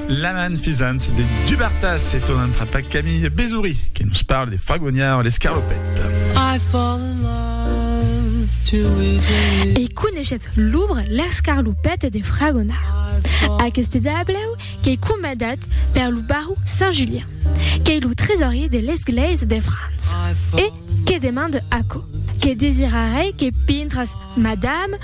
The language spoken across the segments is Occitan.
Laman Fizant de Dubartas e tornan trapar Camille Bezouri que nos parle de Fragonard l'escarlopèt. E coneishetz l'òbra L'escarlopèt de Fragonard? Aqueste tablèu qu'ei comandat per lo baró Saint Julien, qu'ei lo tresorier de l'Esglèisa de França e que demande aquò, que desirarei que pintras, madame,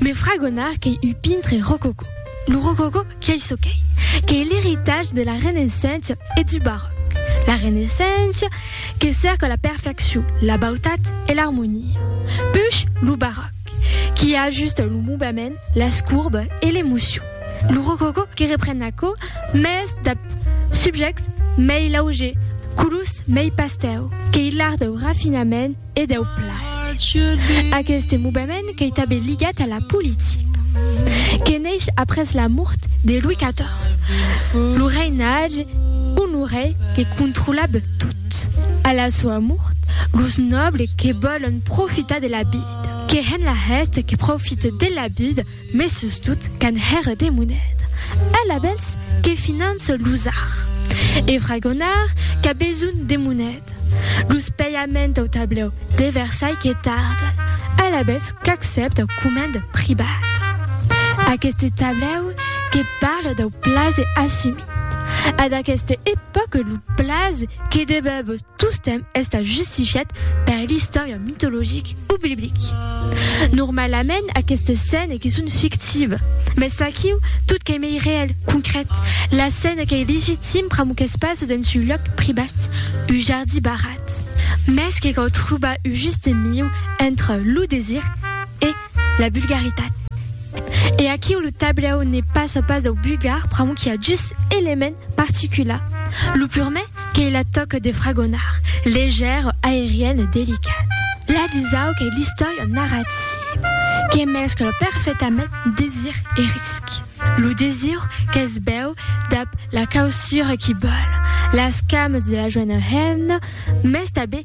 Me fragonar qu'ei un pintre rococò. Lo rococò qu'ei çò qu'ei, qu'ei l'eritatge de la Renaissença e du Baròc. La Renaissença que cèrca la perfeccion, la bautat e l'armonia. Puish lo Baròc qui ajusta lo movement, las courbes e l'emocion. Lo rococò que repren aquò, mès dab subjèctes mei laugers, colors mei pastèu, qu'ei l'art dau rafinament, e deu plaser. Aqueste movement qu'ei tanben ligat a la politica, que neish après la mort de Louis XIV, lo reinatge Honoré que controlab tot. A la soa mort, los nòbles que vòlon profitar de la vida, que hèn la hèsta que profite de la vida, Mes sustot qu'an hèr de monet. Ell a bèls que finance los ar. E fragonard qu'a besonh de monet. Los pèiament au tablèu de Versailh que tarden. Ell a bèls qu'accèpta coment pribat. Aqueste tablèu que parle dau plaze assumit. A d'aqueste epòque lo plaze que debèb. Tostemp estant justifiat per l'istòria mitologic o biblic. Normalament aquestes scènes que son fictives, mès aquiu tot qu'ei mei reèl, concrèt, la scène qu'ei legitim pr'amor qu'es pas dens un lòc privat, un jardí barrat. Mès que cau trobar un juste mieu entre lo desir e. la bulgaritat. E aquiu lo tablèu ne passa pas dau bulgar pr'amor qu'i a dus elements particulars. Lo purmè qu'ei la tòca de fragonar, leger, aerian e delicat. La dusau qu'ei l'istòria narrativa, que mescla perfectament desir e risc. Lo desir que's bèu dab la causura qu'i bòl, las camas de la joena hemna, mès tanben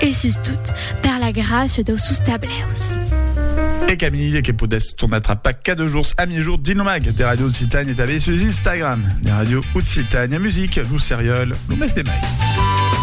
E sustot, per la gràcia dau sus tableus. E Camille, que podètz tornar trapar cada jorns a miègjorn dins lo mag de Ràdio Occitània e tanben sus Instagram de Ràdio Occitània Music, lo serial, lo mes de mai.